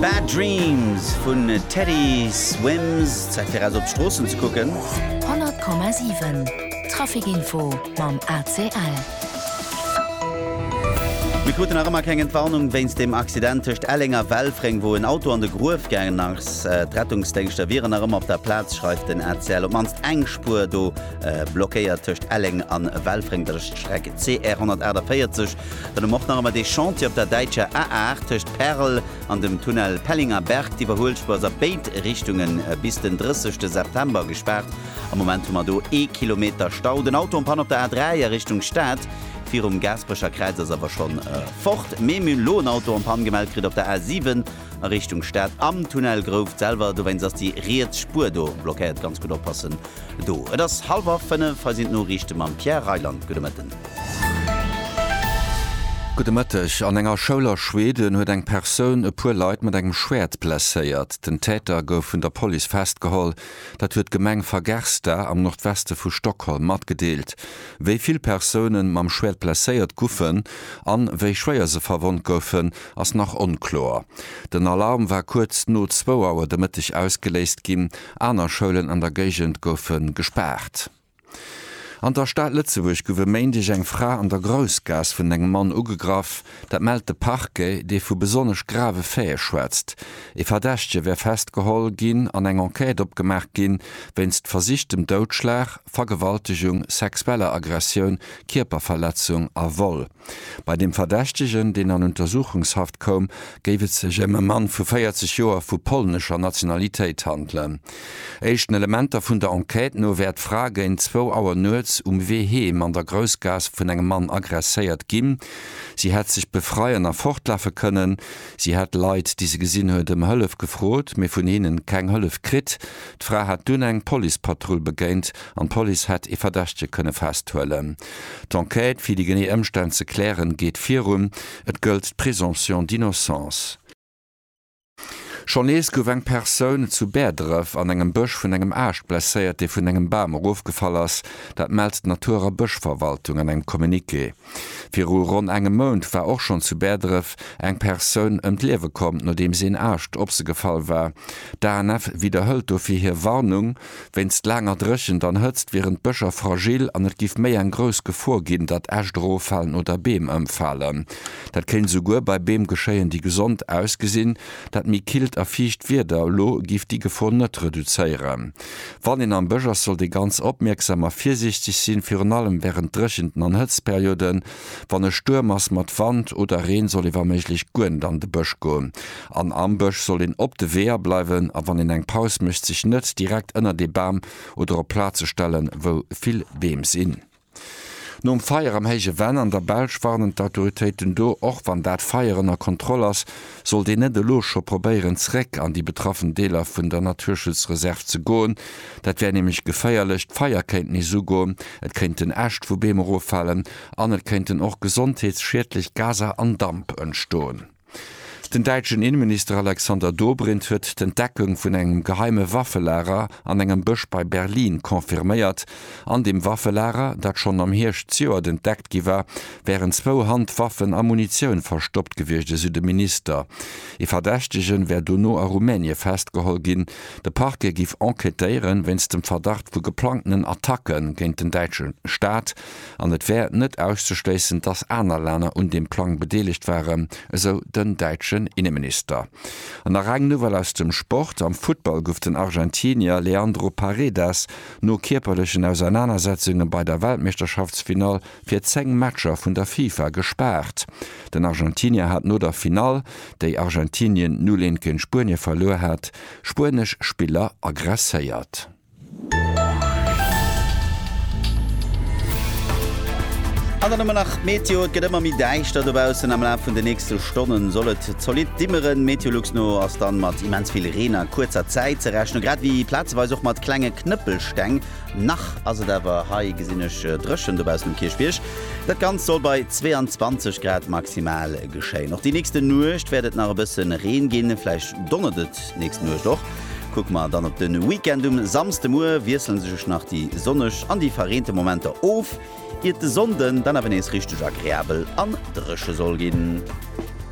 Bad Dreams vun Teddy Swims, Zäit fir raus op d'Stroossen ze kucken. 100,7 Trafic Info mam ACL. Mir kruten nach ëmmer keng Entwarnung wéinst dem Accident tëscht Elleng a Welfréng, wou en Auto an de Gruef gaangen ass. D'Rettungsdéngschter wieren nach ëmmer op der Plaz, schreift den ACL. Op d'mannst eng Spuer do blockéiert tëscht Elleng a Welfréng, dat ass d'Streck CR 148. Dann hu mer och nach ëmmer dee Chantier op der däitscher A8 tëscht Perl an dem Tunnel Pellinger Berg. D'Iwwerhuelspur ass a béid Richtunge bis den 30 September gespaart. Am Moment hu mer do ee Kilometer Stau. Den Auto am Panne op der A3 a Richtung Stad virum Gaasperecher Kräiz ass awer schonn fort. Mee mir hunn elo en Auto am Panne gemellt kritt op der A7. a Richtung Stad am Tunnel Grouft selwer. Dowéinst ass déi riets Spuer do blockéiert. Ganz gutt oppassen do. Et ass hallwer 5, hei sinn d'Noriichte mam Pierre Reyland. Gudde Mëtten. Gudde Mëtteg. An enger Schoul a Schweden huet eng Persoun e puer Leit mat engem Schwäert blesséiert. Den Täter gouf vun der Police festgeholl. Dat huet d'Gemeng Fagersta am Nordweste vu Stockholm matgedeelt. Wéi vill Persounen mam Schwäert blesséiert guffen an wéi schwéier se verwonnt goufen, ass nach onkloer. Den Alarm war kuerz no zwou Auer de Mëtteg ausgeléist ginn. Aner Schoulen an der Géigend goufe gespaart. An der Stad Lëtzebuerg gouf e Méindeg eng Fra an der Groussgaass vun engem Mann ugegraff. Dat mellt de Parquet, dee vu besonnesch grave Faite schwätzt. Ee Verdächtege wär festgeholl ginn an eng Enquête opgemaach ginn, wéinst versichtem Doudschlag, Vergewaltegung, sexueller Aggressioun, Kierperverletzung a Vol. Bei dem Verdächtegen, deen an Untersuchungshaft koum, géif et sech ëm e Mann vu 40 Joer vu polnescher Nationalitéit handelen. Éischten Elementer vun der Enquête no wär d'Fra géint zwou Auer nuets um Wee heem an der Groussgaass vun engem Mann agresséiert ginn. Si hätt sech befreien a fortlafe kënnen. Si hätt Leit, déi se gesinn huet, ëm Hëllef gefrot, mee vun hinnen keng Hëllef kritt. D'Fra hätt dunn eng Policepatrull begéint an d'Police hätt ee Verdächtege kënne festhuelen. D'Enquête fir déi genee Ëmstänn ze klären, geet virun. Et gëllt d'Présomption d'innocence. Schonn nees gouf eng Persoun zu Bäerdref an engem Bësch vun engem Aascht blesséiert, dee vun engem Bam erofgefall ass. Dat mellt d'Natur a Bëschverwaltung an engem Communiqué. Viru ronn engem Mount war och schonn zu Bäerdref eng Persoun ëm d'Liewe komm, nodeems een Aascht op se gefall war. D'ANF widderhëlt dofir hir Warnung. Wéinst laanger Dréchent an Hëtzt wieren d'Bëscher fragil an et giff méi eng grouss Gefor ginn, datt Äscht eroffalen oder Beem ëmfalen. Dat kéint esouguer bei Beem geschéien, déi gesond ausgesinn. Dat méi killt a fiicht Wieder elo giff déi Gefor net reduzéieren. Wann een am Bësch ass, sollt ee ganz opmierksam a virsiichteg sinn, virun allem wärend Dréchenten an Hëtztperioden. Wann e Stuerm ass mat Wand oder Reen, soll ee wa méiglech guer net an de Bësch goen. An am Bësch soll een op de Weeër bleiwen a wann een eng Paus mécht, sech net direkt ënnert ee Bam oder op Plaze stellen, wou vill Beem sinn. Nom Feier am Héije Venn an der Belsch warnen d'Autoritéiten do. Och wann dat Feier ënner Kontroll ass, sollt een net elo scho probéieren, zeréck an déi betraffen Deeler vun der Naturschutzreserv ze goen. Dat wär nämlech geféierlech, d'Feier kéint nees ugoen, et kéinten Äscht vu Beem eroffalen an et kéinten och gesondheetsschiedlech Gaser an Damp entstoen. Den däitschen Inneminister Alexander Dobrindt huet d'Entdeckung vun engem geheime Waffelager an engem Bësch bei Berlin confirméiert. An deem Waffelager, dat schonn am Hierscht zejoert entdeckt gi war, wären zwou Handwaffen a Munitioun verstoppt gewiescht, esou de Minister. Ee Verdächtegen wär dono a Rumänie festgeholl ginn. De Parquet giff enquêtéieren, wéinst dem Verdacht vu geplangtenen Attacke géint den däitsche Staat. an et wär net auszeschléissen, datt aner Länner un deem Plang bedeelegt waren, esou den däitschen Inneminister. An nach eng Nouvelle aus dem Sport, Am Futtball gouf den Argentinier Leandro Paredes no kierperlechen Ausernanersetzunge bei der Weltmeeschterschaftsfinall fir 10 Matcher vun der Fifa gespaart. Den Argentinier hat no der Finall, déi Argentinien 0, 1 géint Spuenie verluer hat, spuenesch Spiller aggresséiert. An dann hu mer nach d'Meteo, Et gëtt ëmmer méi däischter dobaussen. Am Laf vun de nächste Stonne soll et zolidd dimmeren. Meteolux no ass dann mat immens vill Reen a kuerzer Zäit ze rechnen, grad ewéi plazeweis och mat klenge Knëppelsteng. Nach ass et awer hei gesinn ech dréchen dobaussen um Kierchbierg. Dat Ganzt soll bei 22 Grad maximal geschéien. Och déi nächste Nuecht wäert et nach e bësse Reen ginn, vläicht donnert et. D'nächst Nuecht och. Kucke mer dann op de Weekend. Um Samsdemuer wiessele sech nach déi sonneg an déi verreente Momenter of, iert de Sonnde dann awer nees richteg agreabel an dréche soll ginn.